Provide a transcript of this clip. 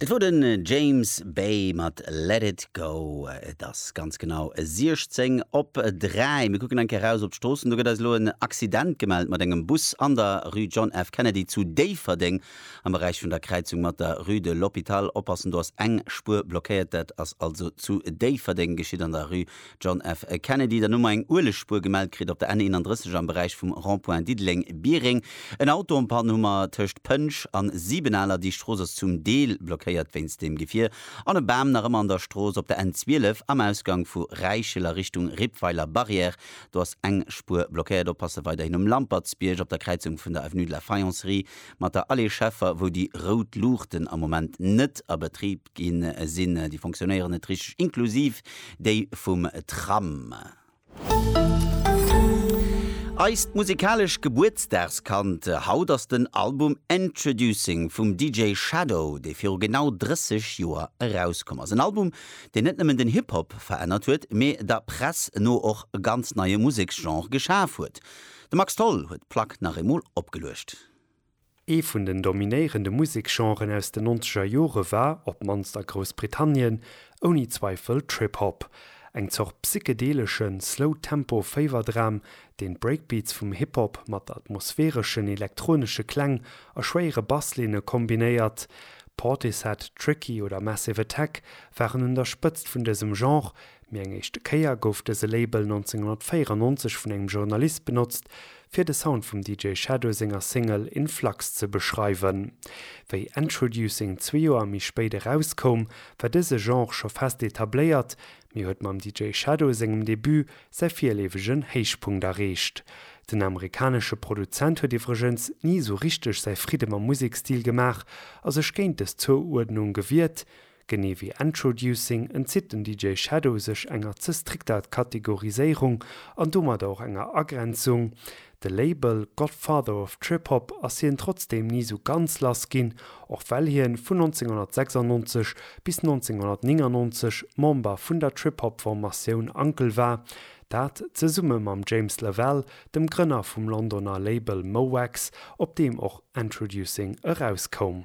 Dat wor den James Bay mat Let It Go. Et ass ganz genau 16 op 3. Mir kucken eng Kéier raus op d'Stroossen. Do gëtt eis elo en Accident gemellt mat engem Bus an der Rue John F. Kennedy zu Déifferdeng am Beräich vun der Kräizung mat der Rue de l'Hôpital. Oppassen, do ass eng Spuer blockéiert. Dat ass also zu Déifferdeng geschitt an der Rue John F. Kennedy der Nummer eng Uelegspuer gemellt kritt op der N 31 am Beräich vum Rond-point Diddeleng-Biereng. En Auto um Pan Hummer tëscht Pënsch an Sibenaler, déi Strooss ass zum Deel blockéiert wéinst dem Gefier, an e Bam nach ëmmer an der Strooss op der N 12 am Ausgang vu Räichel a Richtung Rippweiler Barrière. Do ass eng Spuer blockéiert. Oppasse weiderhin um Lampertsbierg op der Kräizung vun der Avenue de la Faïencerie mat der Allée Scheffer, wou déi rout Luuchten am Moment net a Betrib. gi sinn, déi fonctionnéieren net richteg, inklusiv déi vum Tram. Eist musikalesch Gebuertsdagskand haut ass den Album Introducing vum DJ Shadow, dee viru genau 30 Joer erauskomm ass. En Album, deen net nëmmen den Hip-Hop verännert huet, mee der Press no och e ganz neie Museksgenre geschaf huet. De Max Tholl huet d'Plack nach eemol opgeluecht. Ee vun den dominéierende Museksgenren aus den nonzeger Jore war, op d'mannst a Groussbritannien, ouni Zweifel Trip Hop. Eng Zort psychedeleschen, slow-tempo Féiwerdram, deen d'Breakbeats vum Hip Hop mat atmosphäreschen elektronesche Kläng a schwéiere Basslinne kombinéiert. Portishead, Tricky oder Massive Attack waren un der Spëtzt vun dësem Genre, Mee eng éischte Kéier gouf dëse Label 1994 vun engem Journalist benotzt, fir de Sound vum DJ Shadow senger Single In Flux ze beschreiwen. Wéi Endtroducing zwee Joer méi spéit erauskoum, war dëse Genre scho fest etabléiert, mee huet mam DJ Shadow sengem Debut säi virleefegen Héichpunkt erreecht. Den amerikanesche Produzent huet iwwregens ni esou richteg säi Fridde mam Musekstil gemaach a sech géint dës Zouuerdnung gewiert, Genee wéi Endtroducing entzitt den DJ Shadow sech enger ze strikter Kategoriséierung an domadder och enger Agrenzung. De Label Godfather of Trip Hop ass hien trotzdeem ni sou ganz lass ginn, och well hien vun 1996 bis 1999 Member vun der Trip Hop Formatioun Uncle war, dat zesumme mam James Lavell, dem Grënner vum Londoner Label Mo Wax, op deem och Endtroducing erauskoum.